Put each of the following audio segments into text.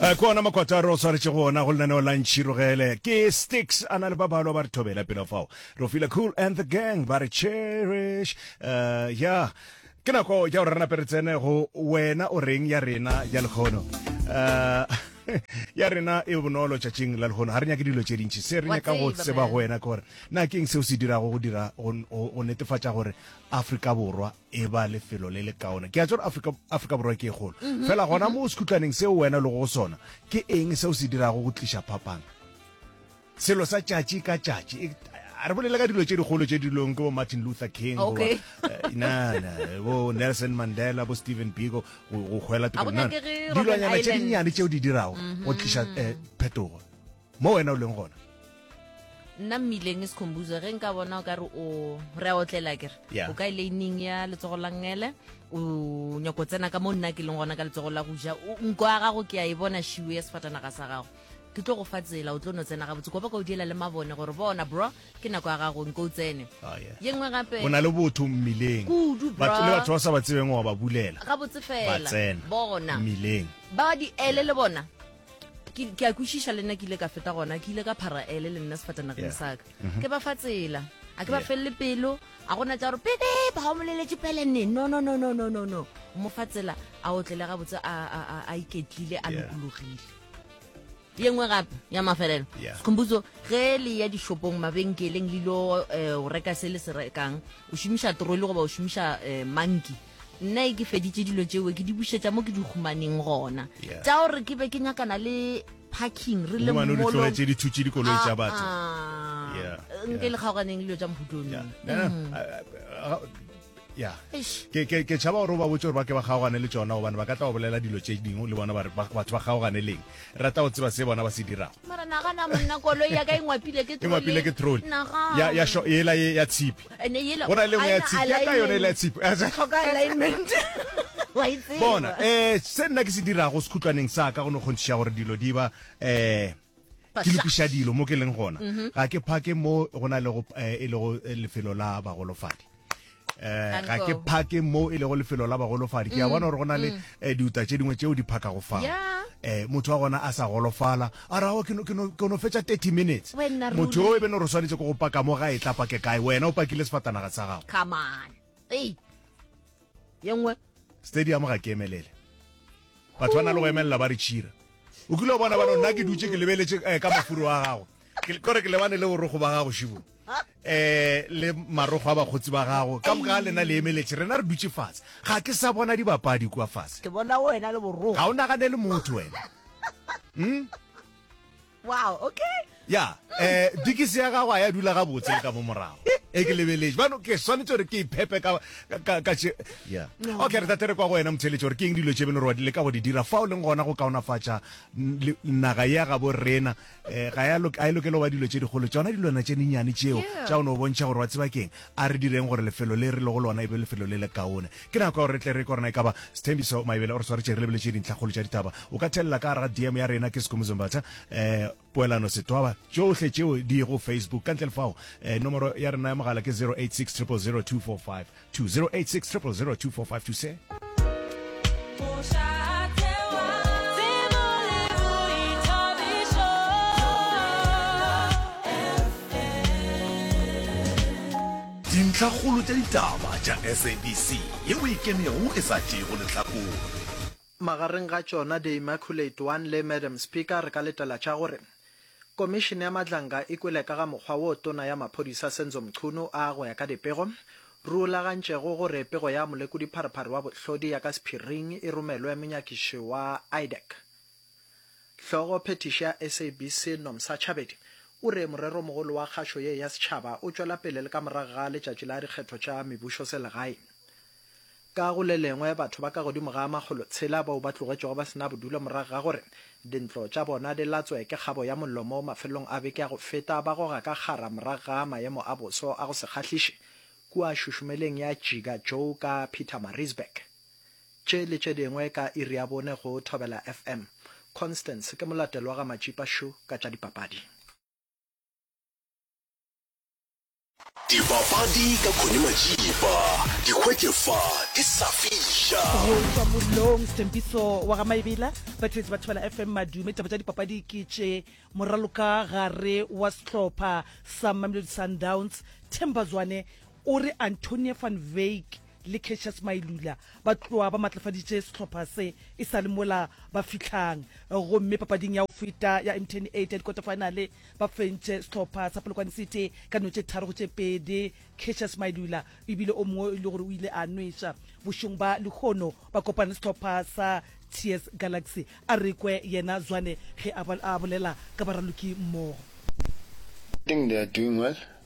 Eh, ke ona makwataro o tshwaretse go ona go lenaneo la ntšhirogele ke sticks a na le ba balo ba re thobela pelo fao re fila cool and the gang ba re cherish uh, ya yeah. ke nako ya gore re nape re tsene go wena o reng ya rena ya lekgono uh, ya rena e bonolo tšatšing la legono ga re nyake dilo tše dintšhi se re nyaka go tseba go wena ke gore na keng seo se dirago go dira go netefatša gore afrika borwa e ba lefelo le le kaone. Ke a tswa Afrika, Afrika Borwa ke e kgolo. Fela gona mo sekhutlaneng seo wena le go sona, ke eng seo se dirago go tliša phapang? Selo sa tšatši ka tšatši. E, a re bolele ka dilo tše dikgolo tše dilong ke bo Martin Luther King, okay. goba, eh, na, na, bo Nelson Mandela, bo Stephen Biko, go, go hwela teko. Dilonyana tše dinnyane tšeo di dirago go tliša eh, phetogo. Mo wena o leng gona. nna mmileng e sekhombuzo ge nka bona o ka re o re a otlela kere Yeah. o ka eleining ya letsogo la ngele o nyako o tsena ka mo nna ke leng gona ka letsogo la go ja O- nko ya gago ke a e bona šiwo ya sefatanaga sa gago ke tlo go fa tsela o tlo no tsena gabotse kopa ka o diela le mabone gore bona bro ke nako ya gago nko o tsene Ah, yeah. ye nngwe gape o na le botho mmileng Kudu, Batho- bra. le batho ba sa ba tsebeng wa ba bulela gabotse ba fela tsena bona mmileng ba di ele le bona ke ke a kwešiša le nna ke ile ka feta gona ke ile ka phara ele le nna sefatanageng Yeah. saka ke ba fa tsela a ke ba Yeah. felele pelo a gona tša gore pede ba o moleletše pele ne no no no no no no no o mo fa tsela a otlele gabotse a, a, a, a iketlile a Yeah. lokologile ye nngwe gape ya mafelelo Yeah. sekhombuso ge le ya dishopong mabenkeleng le ilo um o reka se le se rekang o šomiša troli goba o šomiša um monkey nna e ke feditše dilo tšeo ke di bušetša mo ke di humaneng gona yeah. tša gore ke be ke nyakana le parking re le molotse dithutše dikoloi tša ah, batho ah. yeah. nke le kgaoganeng dilo tša mphutong yeah. mm. ya ke tšhaba gore o ba botse gore ba ke ba kgaogane le tsona gobane ba ka tla go bolela dilo tse dingwe le bona batho ba kgaogane leng rata go tseba se bona ba se dirago e ngwapile ke troli ela ya tshipi go na le nngwe ya tshipi ya ka yone e le ya tshipi bona um se nna ke se dirago sekhutlwaneng sa ka go ne kgontšhiša gore dilo di ba um ke lokiša dilo mo ke leng gona mhm. ga ke phake mo go na lego eh, e lego eh, lefelo la bagolofadi um ga ke phake mo e lego lefelo la bagolofadi ke a mm, bona gore go na le mm. diuta tše dingwe tšeo di phakago fao um motho wa gona a sa golofala A ra o, ke no, ke no, ke no fetša thirty minutes. Wenna ruri. Motho yo e be no re swanetše ke go paka mo ga e tla pake kae, wena o pakile sefatanaga sa gago. Come on. Ei. Ye nngwe. Stadium ga ke emelele. Batho ba na le go emelela ba re tšhira. O kile wa bona ba no, nna ke dutše ke lebeletše, eh, ka mafuro a gago. Ke, kore ke lebane le borokgo ba gago, Shivo. um le marogo a bakgotsi ba gago ka moka ga lena le emeletše rena re dutše fatshe ga ke sa bona dibapadi kua fase ke bona wena le borogo ga o naganele motho wena hmm? wow okay ya um dikisi ya gago a ya dula gabotse le ka mo morago e ke lebeletse bano ke swanetse gore ke iphepe ka okay re tate re kwa go wena motheletše gore ke eng dilo tše beno re wadile ka go di dira fa o leng gona go kaonafatša naga ya gabo rena eh, ga ya lok- a e lokela go ba dilo tše dikgolo tšona dilwana tše dinnyane tšeo Yeah. tša o no bontšha gore wa tseba keng a re direng gore lefelo le re lego lona e be lefelo le le kaone ke nako ya gore re tle re ke gorena e kaba sethembiso maebele o re swaretše re lebeletse dintlhakgolo tša ditaba o ka thelela ka gara dm ya rena ke sekomozombatha um poelano setwaba tšohle tšeo di go facebook ka ntle le fao um nomoro ya rena ya mogala ke 086 000 245 Dintlhakgolo tša ditaba tša SABC yeo e kemego e sa tšeego lehlakore. Magareng ga tšona The Immaculate One le Madam Speaker re ka letela tša gore Komišene ya Madlanga e kwele ka ga mokgwa woo Tona ya Maphodisa Senzo Mchunu a, go ya ka dipego, rulagantšego gore pego ya Molekodi-Phariphari wa Bohlodi ya ka sephiring e romelwe monyakiši wa IDAC. Hlogo phethiši ya SABC Nomsa Chabedi o re moreromogolo wa kgašo ye ya setšhaba o tšwela pele le ka morago ga letšatši la dikgetho tša mebušoselegaeng. Ka go le lengwe, batho ba ka godimo ga a makgolo tshela bao ba tlogetšwego ba se na bodulo morago ga gore dintlo tša bona di latswe ke kgabo ya mollo mo mafelelong a beke ya go feta ba goga ka kgara morago ga maemo a boso a go se kgahliše kua šušumeleng ya Jiga Joe ka Pietermaritzburg. Tše le tše dingwe ka iri ya bone go Thobela FM. Constance ke molatelo wa ga Matšipa Shu ka tša dipapadi. Dipapadi ka Connie Majiba, di hwetše fa di sa fiša. Go tšwa mollong Sthembiso wa ga Maebela, Patrice Bathola FM Madume. Taba tša dipapadi ke tše, moraloka gare wa sehlopha sa Mamelodi Sundowns Themba Zwane o re Antonie van Wyk le Cassius Mailula ba tloa ba matlafaditše sehlopha se e sa le mola ba fihlang gomme papading ya go feta ya Mtn 8 ya dikwatefaenale ba fentše sehlopha sa Polokwane City ka dino tše tharo go tše pedi. Cassius Mailula o ebile o mongwe o ile gore o ile a nweša bošong ba lehono ba kopana le sehlopha sa TS Galaxy, a re kwe yena Zwane ge a bolela ka baraloki mmogo. I think they are doing well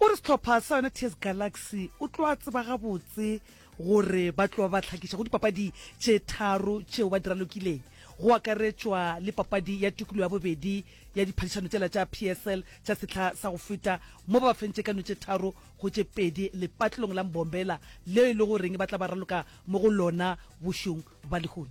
O re sehlopha sa yona TS Galaxy o tlo a tseba gabotse gore ba tlo ba hlakiša go dipapadi tše tharo tšeo ba di ralokileng, go akaretšwa le papadi ya tukulo ya bobedi ya diphadišano tšela tša PSL tša sehla sa go feta mo ba ba fentše ka no tše tharo go tše pedi lepatlelong la Mbombela leo e lego goreng ba tla ba raloka mo go lona bošong ba lehono.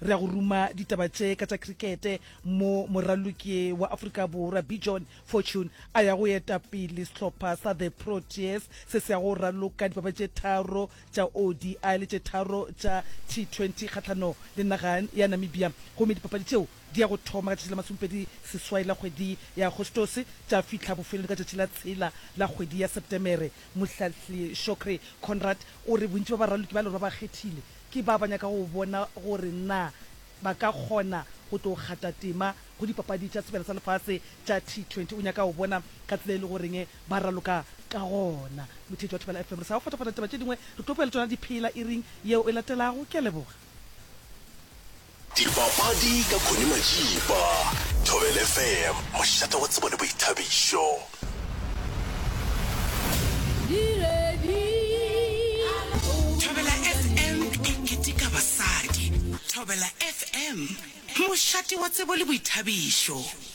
Re a go ruma ditaba tše ka tša krikete mo moraloki wa Afrika Borwa Bijon Fortune a ya go eta pele sehlopha sa The Proteas se se yago go raloka dipapadi tše tharo tša ODI le tše tharo tša T20 kgahlano le naga ya Namibia gomme dipapadi tšeo di ya go thoma ka tšatši la masomepedi seswai la kgwedi ya Agostose tša fihla bofelong ka tšatši la tshela la kgwedi ya Sepetemere. Mohlahli Shokri Conrad o re bontši ba baraloki ba lorwa ba kgethile Ke ba ba nyaka go bona gore na ba ka kgona go tlo kgata tema go dipapadi tša sebjana sa lefase tša T20. O nyaka go bona ka tsela e le goreng ba raloka ka gona. Motheetši wa Thobela FM, re sa go fatafata ditaba tše dingwe, re tlo boela tšona di phela iring yeo e latelago. Ke a leboga. Dipapadi ka Connie Matšipa, Thobela FM, mošate wa tsebo le boithabišo. Thobela FM e keteka basadi. Thobela FM, mošate wa tsebo le boithabišo.